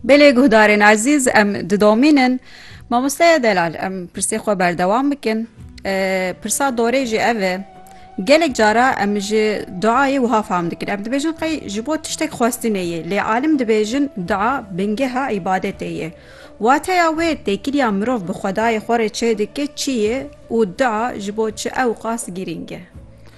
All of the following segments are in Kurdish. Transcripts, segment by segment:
Belê guhdarên ezîz em didomînin mamosteya delal em pirsê xwe berdewam bikin pirsa dorê jî ev e gelek cara em ji duayê wiha fam dikin em dibêjin qey ji bo tiştek xwestinê yê lê alim dibêjin dua bingeha îbadetê yê wateya wê têkiliya mirov bi xwedayê xwe rê çê dike çi yê û dua ji bo çi ewqas girîng e.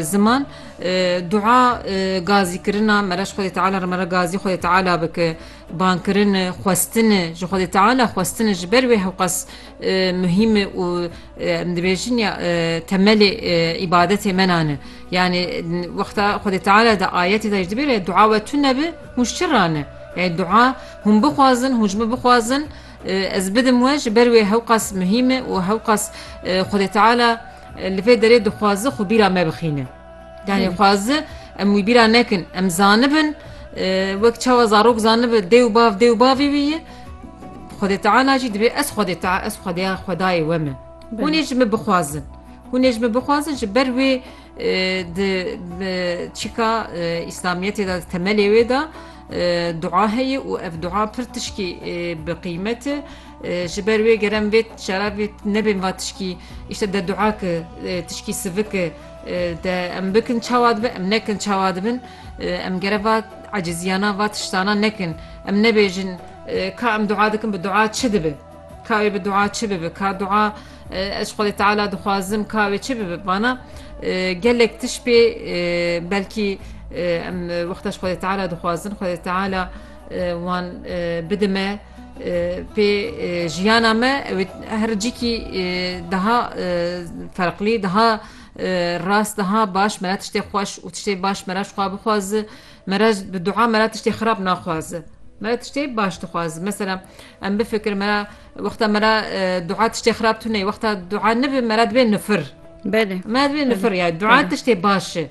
Ziman, dua gazîkirina me re ji Xwedê Teala re me re gazî Xwedê Teala bike, bankirin e, xwestin e ji Xwedê Teala, xwestin e ji ber wê hewqas muhîm e û em dibêjin ya temelê îbadetê me nan e. Yanî wexta Xwedê Teala di ayetê de jî dibêje dua we tune bi hûn ji çi re ne? Yanî dua hûn bixwazin, hûn ji min bixwazin ez bidim we ji ber wê hewqas muhîm e û hewqas Xwedê Teala Li vê derê dixwazi xwe bîra me bixîne. Yanî dixwazi em wî bîra nekin. Em zanibin wek çawa zarok zanibe dê û bav dê û bavê wî ye. Xwedê Teala jî dibê ez Xwedê Teala ez Xwedeya Xwedayê we me. Hûn ê ji min bixwazin. Hûn ê ji min bixwazin ji ber wê di çîka îslamiyetê de temelê wê de dua heye û ev dua pir tişkî bi qîmet e. Ji ber wê gerem vê şerabê nebên va tişkî îşte de dua ki tişkî sivik ki de em bikin çawa dibin em nekin çawa dibin em gere va eciziyana va tiştana nekin em nebêjin ka em dua dikin bi dua çi dibi ka wê bi dua çi bibi ka dua ez xwedê teala dixwazim ka wê çi bibi bana gelek tiş pê belkî em wexta xwedê teala dixwazin xwedê teala wan bidime Pê jiyana me ew her cikî daha ferqlî daha rast daha baş me re tiştê xweş û tiştê baş me re ji xwe bixwaze me re bi dua me re tiştê xirab naxwaze. Me re tiştê baş dixwaze mesela em bifikir me re wexta me re dua tiştê xirab tune wexta dua nibe me re dibê nifir. Belê me dibê nifir ya dua tiştê baş e.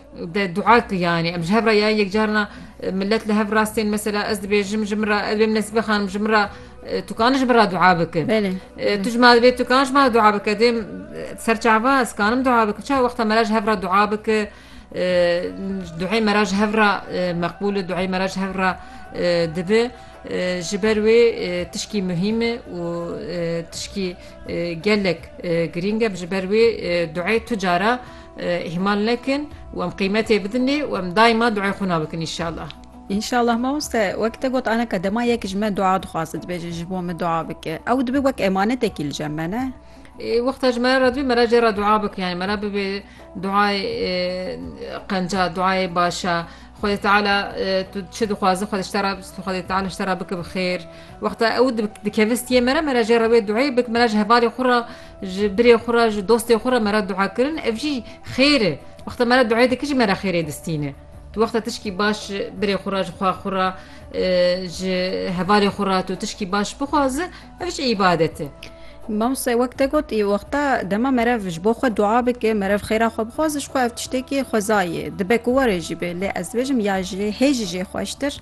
De dua ki yani em ji hev re ya yek carina millet li hev rastên mesela ez dibêjim ji min re ez bêm nesîbe xanim ji min re tu kanin ji min re dua bikin tu ji ma divê tu kan ji ma dua bike dêm serçava ez kanim dua bikin çawa wexta me re ji hev re dua bike duhê me re ji hev re meqbûl e duhê me re ji hev re dibi ji ber wê tişkî muhîm e û tişkî gelek girîng e ji ber wê duhê tu cara Îhmal nekin û em qîmetê bidin lê û em daîma duayê xwe na bikin înşallah. Înşallah mamoste wek te got aneka dema yek ji me dua dixwaze dibêje ji bo min dua bike ew dibe wek emanetekî li cem me ne? Wexta ji me re dibê me re jê re dua bike yani me re bibê duayê qenca duayê başa Xwedê Teala tu çi dixwaze xwe ji te re Xwedê Teala ji te re bike bi xêr wexta ew dikevistiyê me re me re jê re wê duayê bik me re ji hevalê xwe re Ji birê xwe re, ji dostê xwe re me re dua kirin ev jî xêr e. Wexta me re duayê dikir jî me re xêrê distîne. Tu wexta tişkî baş ji birê xwe re, ji xwe xwe re, ji hevalê xwe re tu tişkî baş bixwaze ev jî îbadet e. Mamoste wek te got wexta dema merev ji bo xwe dua bike, merev xêra xwe bixwaze ji xwe ev tiştekî xwezayê dibe ku warê jî bê. Lê ez dibêjim ya jê hê jî jê xweştir